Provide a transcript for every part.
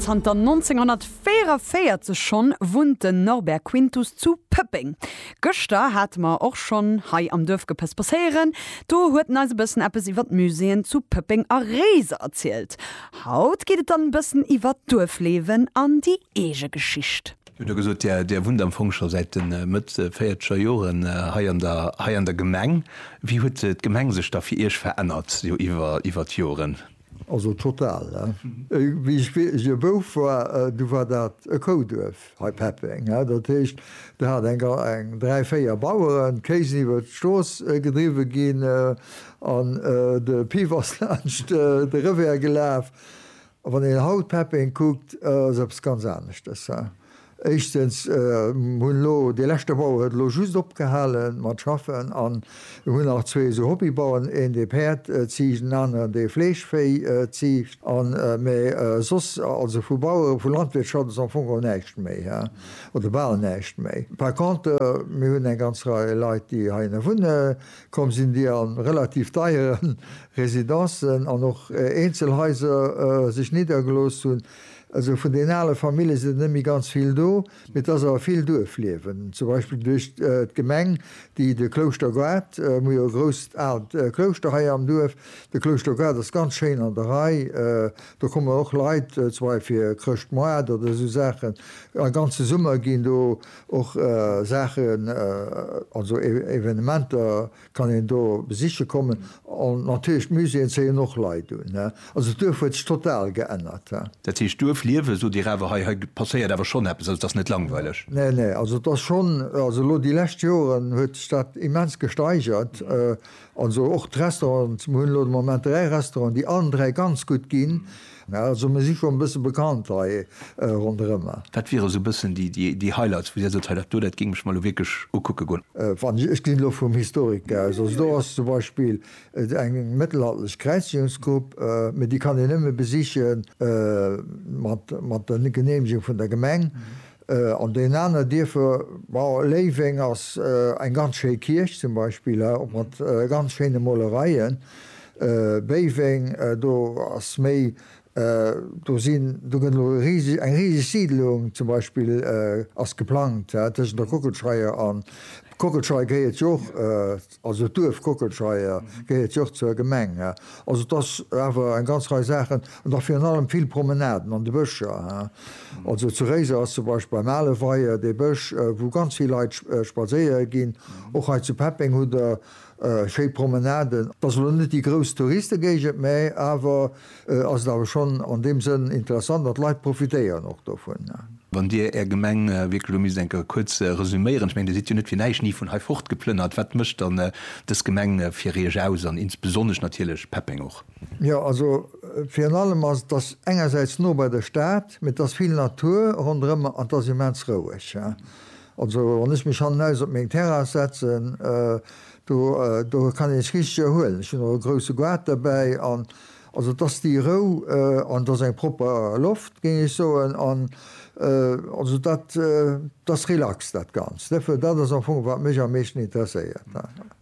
Zanter 1944 schonn wunnt den Norbert Quintus zu Pëppeng. Gëschter hate mer och schonn hei am Duerf gepësspësséieren. Do huet en eis e bëssen eppes iwwer d'Muséeën zu Pëppeng a Réiser erzielt. Haut geet et dann e bëssen iwwer d'Duerfliewen an déi eege Geschicht. Mir hu da gesot, Där wunnt am Fong scho säit de Mëtt véierzeger Joren hei an der Gemeng. Wéi huet d'Gemeng sech da fir Iech verännert, iwwer d'Joren? Also total, he? Wéi ech wierklech e Bouf war, du war dat e Kouduerf hei, Peppeng, he? Dat heescht, do hat eng ga, eng dräi, véier Baueren d'Kéisen iwwert d'Strooss gedriwwe ginn an de Piff ass laanscht de Revers gelaf. A wann een haut Peppeng kuckt, ass eppes ganz aneschtes, he? Éischstens, hunn elo dee leschte Bauer huet elo just opgehale mat schaffen an hunn nach zwee esou Hobbybauern, een dee Päerd ziicht, en aneren dee Fleeschvéi ziicht an, mä soss, also vu Bauere, vu Landwirtschaft ass am Fong geholl näischt méi he oder bal näischt méi. Par contre, mir hunn eng ganz Rei Leit, déi heihinne wunne komm sinn, déi a relativ deiere Residencen an och Eenzelhaiser sech niddergelooss hunn, Also vun den ale Famille sinn der net méi ganz vill do, mee et ass awer vill Duerfliewen, zum Beispill duerch d'Gemeng, déi de Klouschter-Goart, mir hu jo e grousst aalt Klouschter hei am Duerf, de Klouschter-Goart ass ganz schéin an der Rei, do kommen och Leit, zum Beispill fir Chrëschtmoart oder esou Saachen, e ganze Summer ginn do och Saachen, also Evenementer Kann een do besiche kommen. An natierlech d'Muséeën zéien och Leit un. Also d'Duerf huet sech total geännert. Dat heescht Duerf liewen, sot Dir awer hei. Hei passéiert awer schonn eppes. Also et ass net langweileg. Nee, nee. Also et ass schonn, also elo déi lescht Joren huet sech dat immens gesteigert. Also och d'Restaurants, mir hunn elo de Moment dräi Restauranten, déi allen dräi ganz gutt ginn. Also mir si scho e bësse bekannt hei ronderëmmer. Wat wiere sou e bëssen déi Highlights, wou Dir sot, hei dat do, dat géing ech mer elo wierklech ukucke goen? Ech ginn elo vum Historiker aus. Also do ass zum Beispill eng mëttelalterlech Kräizigungsgrupp, mee déi kann een nëmme besiche mat der Geneemegung vun der Gemeng. An den aner Dierfer, ma Léiweng ass eng ganz schéi Kierch zum Beispill, och mat ganz schéine Molereien. Béiweng, do ass méi, do sinn, do gëtt elo riseg, eng riseg Siidlung zum Beispill ass geplangt tëschent der Kockelscheier an, d'Kockelscheier gehéiert jo och. Also d'Duerf Kockelscheier gehéiert jo och zur Gemeng. Also et ass awer eng ganz Rei Saachen an och virun allem vill Promenaden an de Bëscher. Also zu Réiser ass zum Beispill beim ale Weier dee Bësch, wou ganz vill Leit spadséiere ginn. Och hei zu Peppeng hutt Der schéi Promenaden. Et ass elo net déi grouss Touriste-Géigend, mä awer ass et awer schonn an deem Sënn interessant an d'Leit profitéieren och dovun. Wann Dir Är Gemeng wierklech elo misst eng Kéier kuerz resüméieren, ech mengen, Dir sidd jo net fir näischt ni vun hei fortgeplënnert, wat mécht dann dës Gemeng fir Iech aus an insbesonnesch natierlech Peppeng och? Jo, also virun allem ass et, dass engersäits no bei der Stad, mee et ass vill Natur ronderëm an et ass immens roueg. Also wann ech mech hannenaus op meng Terrass setzen, do kann een sech richteg erhuelen. Ech hunn och e grousse Goart derbäi an Also dass déi Rou an dass eng propper Loft, géing ech soen, an also dat dass relax dat Ganzt, net well dat ass am Fong wat mech am meeschten interesséiert.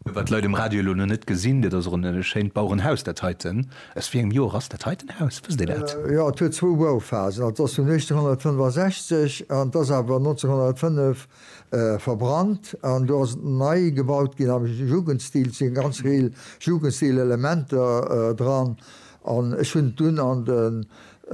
Wat d'Leit um Radio elo nach net gesinn, dat ass och e schéint Bauerenhaus dat heiten. Aus wéi engem Joer ass dat heiten Haus, wësst Dir dat? Jo, et huet zwou Bauphasen, also et ass vun 1865 an et ass awer 1905 verbrannt an do ass nei gebaut ginn am Jugendstil. Et si eng ganz Rei Jugendstil-Elementer dran an ech hunn et dunn an de,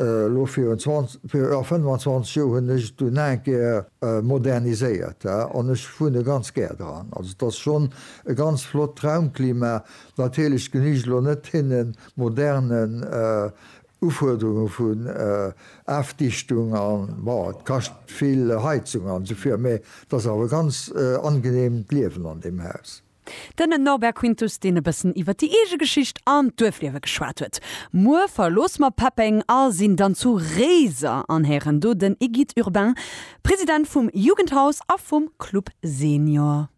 elo virun 20, jo 25 Joer hunn ech et dunn aeng Kéier moderniséiert an ech wunne ganz gär dran. Also et ass schonn e ganz flott Raumklima. Natierlech genügt elo net hinne moderne Ufuerderunge vun Afdichtung an, bon, et kascht vill Heizung an esou vir, mä et ass awer e ganz angeneemt d'Liewen an deem Haus. Den Norbert Quintus, deen e bëssen iwwer déi eege Geschicht an d'Duerfliewe geschwat huet. Muer verloosse mer Peppeng a sinn dann zu Réiser an héieren do den Egide Urbain, President vum Jugendhaus a vum Club Senior.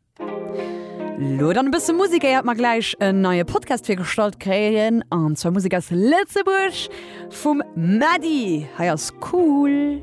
Lo dann e bësse Musik, éiert mer gläich en neie Podcast virgestallt kréien, an zwar Musek aus Lëtzebuerg vum Mady. Hei ass Cool.